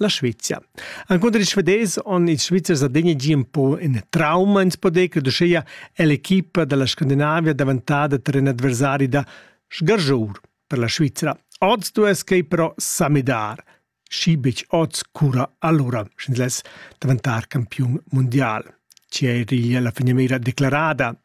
La Svezia. Ancunter ils Svedesi han ils Svizzers adegna gì un po in trauma ins po dir, credo uschia è l'equipa dalla Scandinavia daventada ter in adversari da sgargiur per la Svizzera. Oz duess quei però sa midar. Schibic oz cura allora, sch'ins less daventar campiun mondial. Ci è la finiera declarada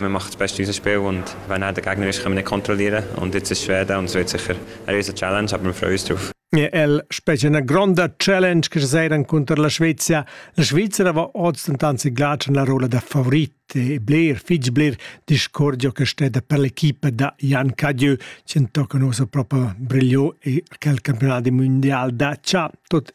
Man macht das Beste, was man spielt und wenn er der Gegner ist, kann man ihn kontrollieren und jetzt ist schwer da und es wird sicher eine riesige Challenge, aber wir freuen uns drauf. El specie una gronda challenge che sera contro la Svezia. La Svizzera va oz anzi glace la rola da favorit e Blair, Fitch Blair, discordio che steda per l'equipe da Jan Cadieu, ci tocca proprio brigliò e quel campionato mondiale da Ciao. Tot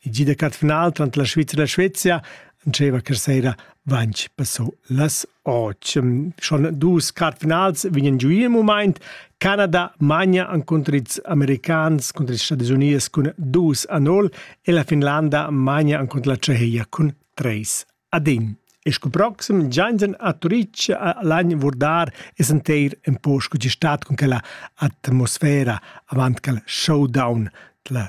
I gi da cat final trant la Svizra e la Svezia diceva che sera vanch passò las 8. Schon dus cat finals vegnan giu il moment. Canada magna an contr ils americans contr ils Stati Unies cun 2 a 0 e la Finlanda magna an contr la Ceheia cun 3 a 1. E sco proxim giangen a Turic a l'agn vurdar es enteir en po sco ci stat con quella atmosfera avant cal showdown la